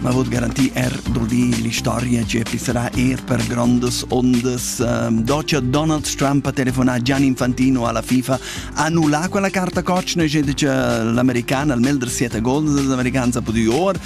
Ma vot garantir er duldi l'istoria che pissarà er per grandes ondas. Um, Deutscher Donald Trump ha telefonato Gian Infantino alla FIFA, annullà quella carta coach nel gente che l'americana al melder siete gol dell'americana ha potuto or.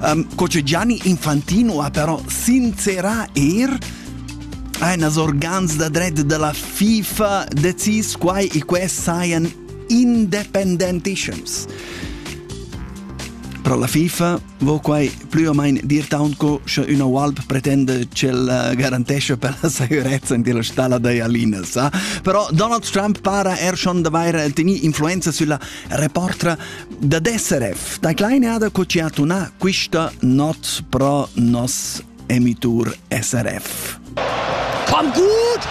Um, coach Gianni Infantino ha però sincerà er Ein as organs da dret della FIFA decis quai e quest sajan independentissims. Pro la FIFA vo quai plü o main dir taunt co sche üna UALP pretende ch'el eh, garantesce per la sicurezza in la stalla da Jalinas. Sa? Però Donald Trump para er schon d'avair teni influenza sulla reportra da DSRF. Da kleine ada co ci ha tuna quista not pro nos Emitur SRF. Komm gut!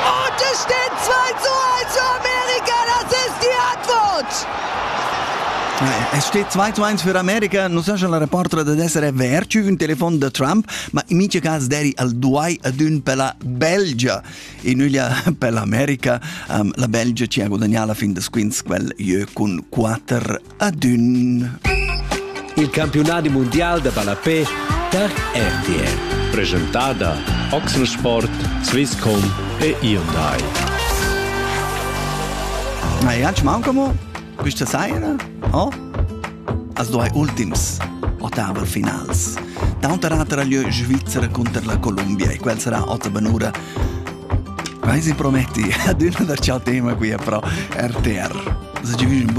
Und es steht 2 zu 1 für Amerika, das ist die Antwort! Es steht 2 zu 1 für Amerika. Non so se la reporter ad essere verci un telefon da Trump, ma in mincha cas deri al duai adun per la Belgia. E nuglia per l'America, um, la Belgia ci ha guadagnato la fin da squinz quel jeu cun 4 adün. Il campiunadi mundial da ballapè per RTL. Presentada Oxensport, Swisscom e Hyundai. Ma Jans Maucamo, bist du seiner? Oh? Also drei ultims ottaver finals. D'auter atera lieu Svizzera contro la Columbia e quel sarà otta benura. Vai si prometti ad una da ciò tema qui è pro RTR. Se ci